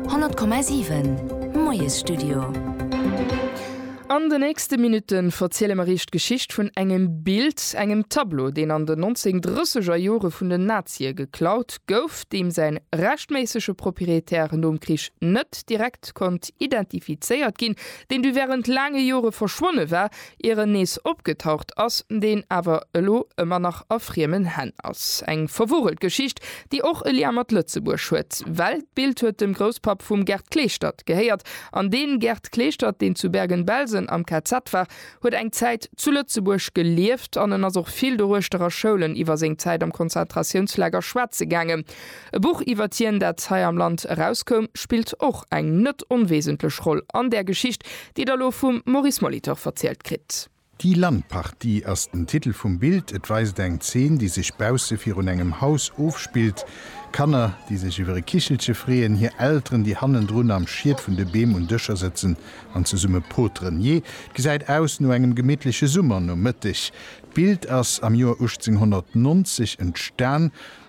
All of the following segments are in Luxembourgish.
100,7 Moiesstudio An de nächste Minutte verziele mer Iech d'Geschicht vun engem Bild, engem Tableau, deen an den 1930er Jore vun den Nazie geklaut gouf, deem säin rechtméissege Propriétaire nom Krich net direkt konnt identifizéiert ginn, deen du während laange Jore verschwonne war, ier en nees opgetaucht ass, deen awer elo ëmmer nach a friemen Hänn ass. Eng verwurelt Geschicht, déi och e Lien mat Lëtzebuerg huet, well d'Bild huet dem Grousspapp vum Gerd Kleeschtert gehéiert, an dee Gerd Kleeschtert, deen zu Bergen-Belsen am KZ war, huet eng Zäit zu Lëtzebuerg gelieft an en ass och vill doruechter a Schoulen iwwer seng Zäit am Konzentratiounslager schwätze gaangen. E Buch iwwert hien, dat hei am Land erauskoum, spillt och eng net onwesentlech Roll an där Geschicht, déi Der elo vum Maurice Molitor verzielt kritt. Die Landpartie ass den Titel vum Bild. Et weist eng Zeen, déi sech bausse virun engem Haus ofspillt. Kanner, déi sech iwwer e Kichelche freeën, hir Elteren, déi hannendrun am Schiet vun de Beem un Dëscher sëtzen an zesumme poteren. Jee, et gesäit aus no engem gemittleche Summernomëtteg. D'Bild ass am Joer 1890 entstan.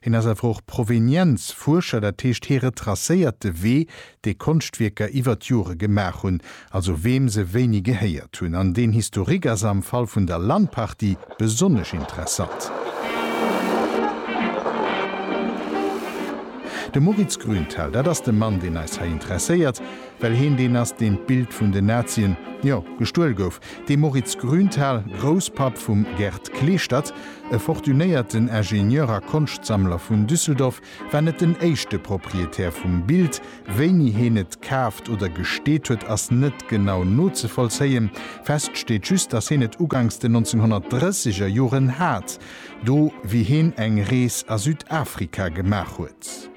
Hien ass awer och Provenienzfuerscher, dat heescht hie retracéiert de Wee, dee Konschtwierker iwwer d'Jore gemaach hunn, also weem se wéini gehéiert hunn. An deen Historique ass am Fall vun der Landpartie besonnesch interessant. De Moritz Grünthal, dat ass de Mann, deen eis hei interesséiert, well hien deen ass, deen d'Bild vun den Nazien, jo, gestuel gouf, De Moritz Grünthal, Grousspapp vum Gerd Kleeschtert, e fortunéierten Ingenieur a Konschtsammler vun Düsseldorf, war net den éischte Proprietär vum Bild. Wéini heen et kaaft oder gesteet huet, ass net genau nozevollzéien. Fest steet just, datt heen et uganks den 1930 er Joren hat, do wéi heen eng Rees a Südafrika gemaach huet.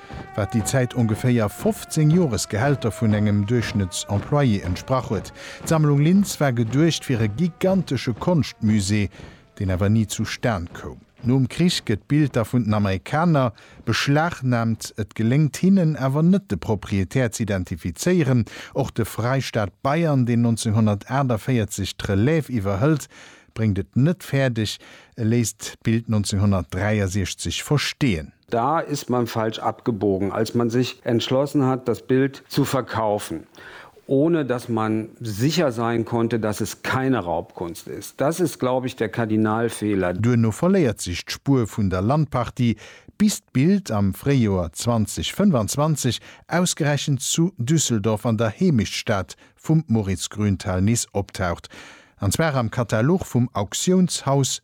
wat déi Zäit ongeféier 15 Joresgehälter vun engem Duerchschnëttsemployé entsprach huet. D'Sammlung Linz war geduecht fir e gigantesche Konschtmusée, deen awer ni zu Stan koum. Nom Krich gëtt d'Bild da vun den Amerikaner beschlagnaamt, et geléngt hinnen awer net de Proprietär z'identifizéieren. Och de Freistaat Bayern, deen 1948 d'Relève iwwerhëlt, bréngt et net fäerdeg, e léisst d'Bild 1963 versteeën. Da ist man falsch abgebogen, als man sich entschlossen hat, das Bild zu verkaufen, ohne dass man sicher sein konnte, dass es keine Raubkunst ist. Das ist, glaube ich, der Kardinalfehler. Duerno verléiert sech d'Spuer vun der Landpartie, bis d'Bild am Fréijoer 2025 ausgerechent zu Düsseldorf an der Heemechtsstad vum Moritz Grünthal nees optaucht, an zwar am Katalog vum Auktiounshaus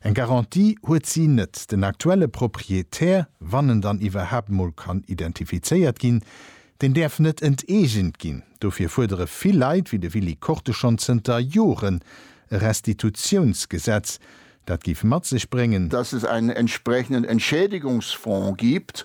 Eng Garantie huet si net. Den aktuelle Proprietär, wann en dann iwwerhaapt mol kann identifizéiert ginn, deen däerf net enteegent ginn. Dofir fuerdere vill Leit, wéi de Willy Korte schonn zënter Joren, e Restitutiounsgesetz, dat géif mat sech bréngen, dass es einen entsprechenden Entschädigungsfonds gibt,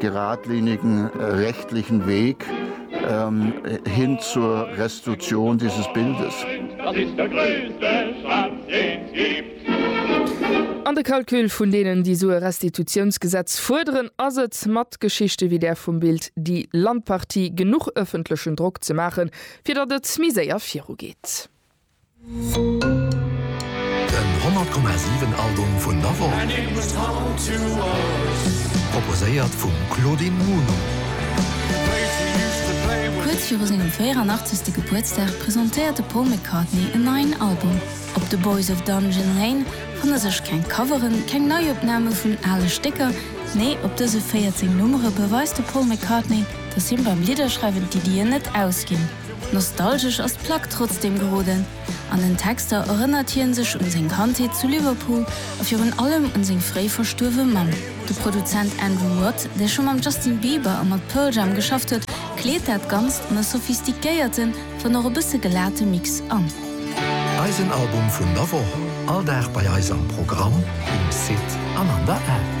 geradlinigen rechtlichen Weg hin zur Restitution dieses Bildes. An de Calcul vun deenen, déi esou e Restitutionsgesetz fuerderen, ass et, mat Geschichte wéi där vum Bild Die Landpartie, genuch öffentlechen Drock ze maachen, fir datt et méi séier virugeet. Den 100,7 Album vun der Woch, proposéiert vum Claudine Muno. Kuerz viru sengem 84. Gebuertsdag presentéiert de Paul McCartney en neien Album. Op The Boys of Dungeon Lane fanne sech keng Coveren, keng Neiopname vun ale Stécker, nee op dëse 14 Nummere beweist de Paul McCartney, dass him beim Lidderschreiwen d'Iddien net ausginn. Nostalgesch ass d'Plack trotzdeem geroden. An den Texter erënnert hien sech un seng Kandheet zu Liverpool a virun allem un seng fréi verstuerwe Mamm. De Produzent Andrew Watt, dee scho mam Justin Bieber a mat Pearl Jam geschafft huet, kleet dat Ganzt an e sophistiquéierten, wann och e bësse gelate Mix an. Eisen Album vun der Woch, all Dag bei eis am Programm, um Site an an der App.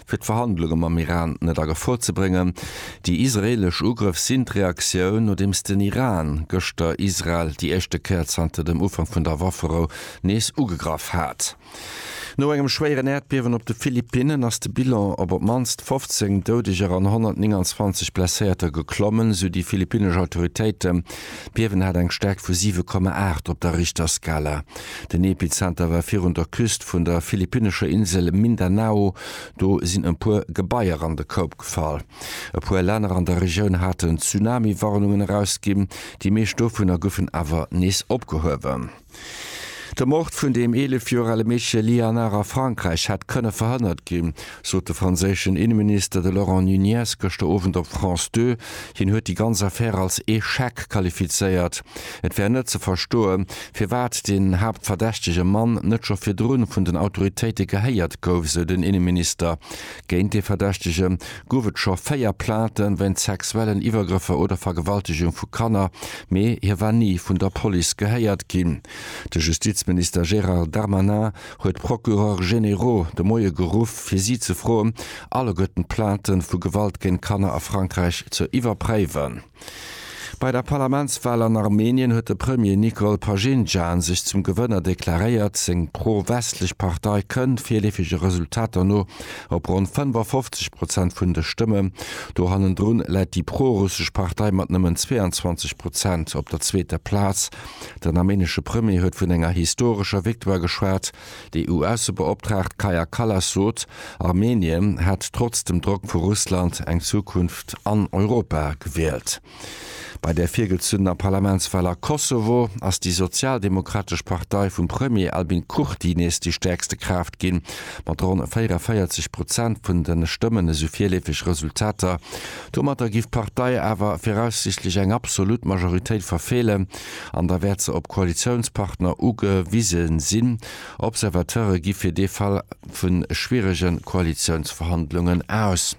fir d'Verhandlunge mam Iran net a Gefor ze bréngen. Déi israeelesch Ugrëff sinn d'Reaktioun, nodeems den Iran gëschter Israel déi éischte Kéier zanter dem Ufank vun der Wafferou nees ugegraff hat. No engem schwéieren Äerdbiewen op de Philippinnen ass de Bilan op op d'mannst 15 Doudeger an 129 Blesséierter geklommen, sou déi philippinnesch Autoritéiten. D'Biewen hat eng Stäerkt vu 7,8 op der Richterskala. Den Epizenter war virun der Küst vun der philippinnescher Insel Mindanao. Do sinn e puer Gebaier an de Koup gefall. E puer Länner an der Regioun haten Tsunami-Warnungen erausginn, déi meescht dovunner goufen awer nees opgehuewen. De Mord vun dem 11 Joer ale Meedche Liannar a Frankräich hätt kënne verhënnert ginn. sot de franséischen Inneminister, de Laurent Nunez, gëschter Owend op France Deux. Hien huet déi ganz Affär als Echec qualifizéiert. Et wär net ze verstoe firwat den haaptverdächtege Mann net scho virdrun vun den Autoritéite gehéiert gouf, sou den Inneminister. Géint dee Verdächtege gouf et scho véier Plainten wéint sexuellen Iwwergrëffer oder Vergewaltegung vu Kanner, mee hie war ni vun der Police gehéiert ginn. De Justizminister Gérald Darmanin huet d'Procureurs généraux de Moie geruff, fir si ze froen, alleguerten d'Plaintë vu Gewalt géint Kanner a Frankräich ze iwwerpréiwen. Bei der Parlamentswal an Armenien huet de Premier Nikol Pashinjan sech zum Gewënner deklaréiert. Seng pro-westlech Partei kënnt, virleefege Resultater no, op ronn 55 Prozent vun de Stëmmen. Do hannendrun läit déi pro-russesch Partei mat nëmmen 22 Prozent op der zweeter Plaz. Den armenesche Premier huet vun enger historescher Victoire geschwat. Déi EU-Aussebeoptraagt Kaja Kallas sot, Armenien hätt trotz dem Drock vu Russland eng Zukunft an Europa gewielt. Bei der virgezunnener Parlamentswal a Kosovo ass déi sozialdemokratesch Partei vum Premier Albin Kurti nees déi stäerkste Kraaft ginn, mat ronn 44 Prozent vun de Stëmmen esou virleefeg Resultater. Domatter giff d'Partei awer viraussiichtlech eng absolut Majoritéit verfeelen an da wäert se op Koalitiounspartner ugewise sinn. Observateure gi fir dee Fall vu schwierege Koalitiounsverhandlungen aus.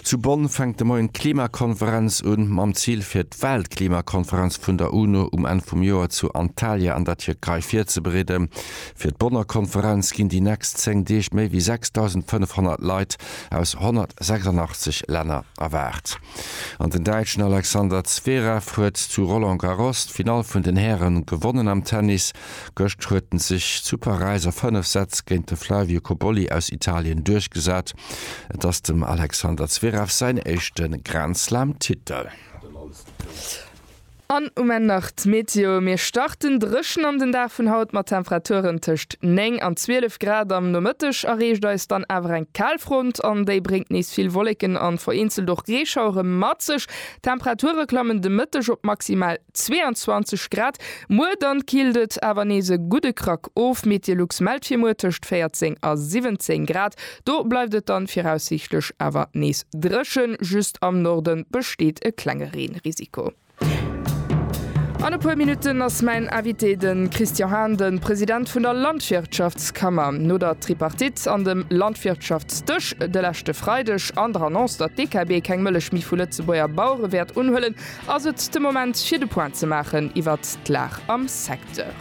Zu Bonn fänkt de Moien d'Klimakonferenz un, mam Zil fir d'Weltklimakonferenz vun der UNO um Enn vum Joer zu Antalya an der Tierkei virzebereeden. Fir d'Bonner Konferenz ginn déi nächst 10 Deeg méi wéi 6.500 Leit aus 186 Länner erwaart. An den Däitschen Alexander Zverev huet zu Roland Garros d'Finall vun den Hären gewonnen. Am Tennis gëscht huet en sech zu Paräis a 5 Sätz géint de Flavio Cobolli aus Italien duerchgesat. Et ass dem Alexander Zverev säin éischte Grand-Slam-Titel. An um Enn nach d'Meteo, Mir starten dréchen an den Dag vun haut mat Temperaturen tëscht 9 an 12 Grad. Am Nomëtteg erreecht eis dann awer eng Kaalfront an déi bréngt nees vill Wolleken an vereenzelt och Reeschauere mat sech. D'Temperature klammen de Mëtteg op maximal 22 Grad. Muer dann killt et awer nees e gudde Krack of, Meteolux mellt fir muer tëscht 14 a 17 Grad. Do bleift et dann viraussiichtlech awer nees dréchen, just am Norde besteet e klenge Reenrisiko. An e puer Minutten ass mäin Invité de Christian Hahn, de President vun der Landwirtschaftskammer. No der Tripartite an dem Landwirtschaftsdësch de leschte Freideg an der Annonce, datt d'EKB keng Mëllech méi vu Lëtzebuerger Bauere wäert unhuelen, ass et de Moment fir de Point ze maachen iwwert d'Lag am Secteur.